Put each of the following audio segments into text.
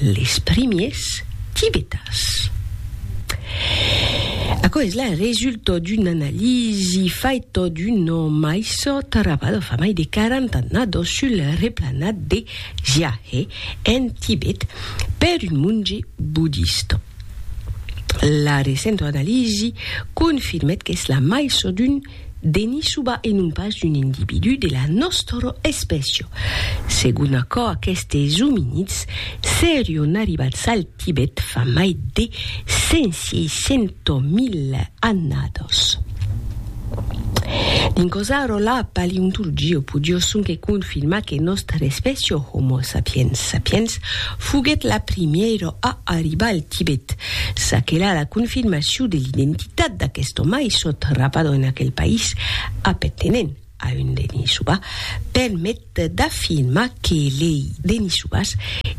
Les primiers tibetans. Aquò es la resulta d'una analisi faita d'una maissa trabada fa mai de 40 annadas sul replanat de Jiahe, en Tibet, per un monge bodista. La recenta analisi confirmèt qu'es la maissa d'un Denissuba e non pas d'un individú de la nòstora espècia. Segon aquò aquestes ominids serion arribats al Tibet fa mai de 500.000 annadas. Dins cosa ro la paleontologia podió sonque confirmar que nòstra espècia Homo sapiens sapiens foguèt la primièra a arribar al Tibet. Çaquelà la confirmacion de l'identitat. Cap d'aquesto mai sò trapado en aquel país appertenent a un Denisova permet d'afirmar que lei Denisovas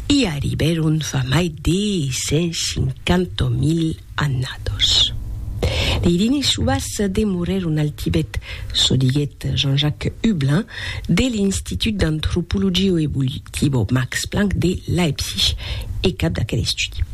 i arribèron fa mai de 150.000 annados. Lei Denisovas demorèron al Tibet, çò diguèt Jean-Jacques Hublin de l'Institut d'Antropologio Evolutivo Max Planck de Leipzig e cap d'aquel estudi.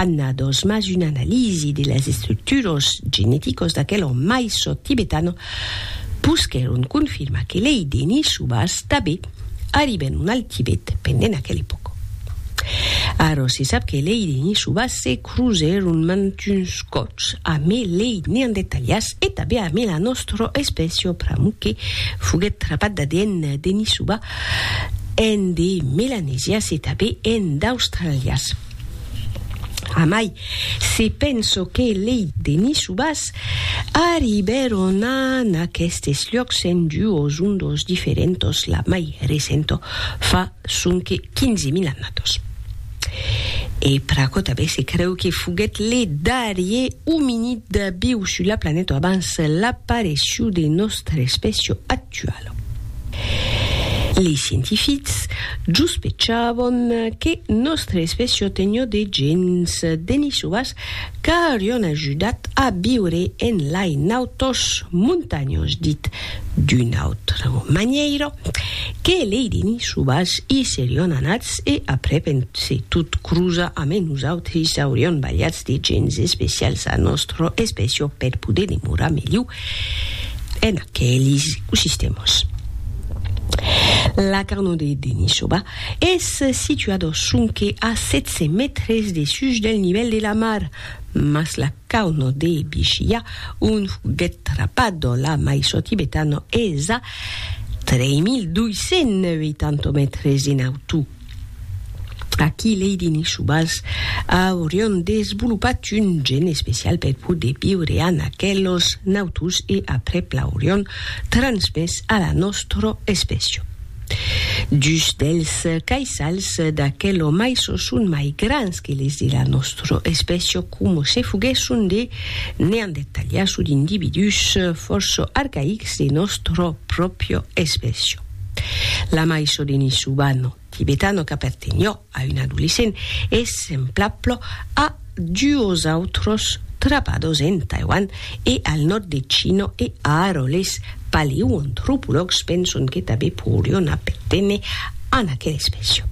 annados, mas una analisi de las estructuros geneticos d'aquel òme mai sòt tibetano pousquèron confirmar que lei denisubas tanben arribèron al Tibet pendent aquel epòca. Ara se sap que lei denisubas se crusèron mantuns còps amé lei neandertalians e tanben amé la nòstra espècia pr'amor que foguèt trapat d'ADN denisuba en de melanesians e tanben en d'australians. Amai, se penso que lei denisubas arribèron a n'aquestes luòcs en duos ondos diferentos, la mai recento fa sonque 15.000 annados. E Pracòtabe se creu que foguèt le darrier ominid viu sus la planeta abans l'aparecíu de nòstra espècia actuala. Lei scientifics juspechavan que nòstre espècia tenió de gèns denisovas qu'aurion ajudat a viure en lai nautós montanhós dit d'una autra manièira que lei denisovas i serion anats e aprèp en se tot crosa amé nosautris aurion balhats de gèns especials a nòstra espècia per poder demorar melhor en aquelis ecosistèmas. La carnot de Denisova es situada sonque a 700 mètres dessús del nivèl de la mar, mas la carnot de Bichiya, ont foguèt trapada la maison tibetana, es a 3.280 mètres en autor. Aquí lei diners subals aurián desvolopat un gen especial per poder viure an aquelos nautus e aprèp l'aurián transmés a la nòstra espècia. Dus dels caissals d'aquelo maiço son mai grans que les de la nòstra espècia coma se foguèsson de neandertalians o d'individús fòrça arcaics de nòstra pròpria espècia. La maisho de Nishubano tibetano qu'apertenhó a un adolescent es semplaplo a duos autros trapados en Taiwan e al nòrd de China e ara les paleoantropològs penson que tabé poirion aperténer a aquela espècia.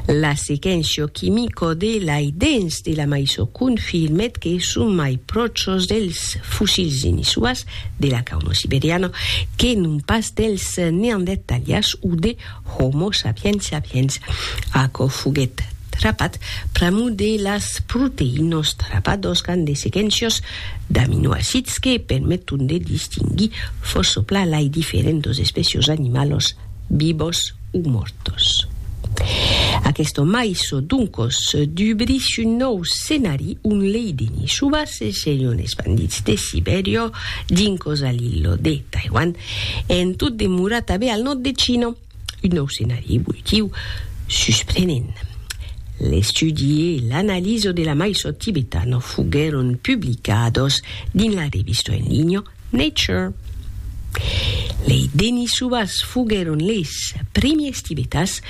La sequéncia quimica de lai dens de la maisho confirmèt que son mai pròchos dels fossils de Nishubas de la qu'Homo siberiano, que non pas dels Neandertalians o de Homo sapiens sapiens. Aquò foguèt trapat pr'amor de las proteïnas trapadas qu'an de sequencias d'aminoacids que permeton de distinguir fòrça plan lai diferentas espècias animalas vivas o mòrtos. Aqueste mai çò doncos d'ubris un nòu scenari ont lei denis subasses serion espandits de Sibèria dincos a l'illo de Taiwan en tot demorar tanben al nòrd de China. Un nòu scenari evolutiu susprenent. L'estudi e l'analiso de la mai çò tibetano foguèron publicados dins la revista en linha Nature. Lei Denisovas foguèron leis primiers tibetas,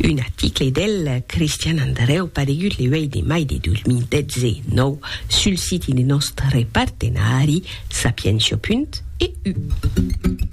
un article del Cristian Andrèu paregut le 8 de mai de 2019 sul siti de nòstre partenari Sapientia. EU.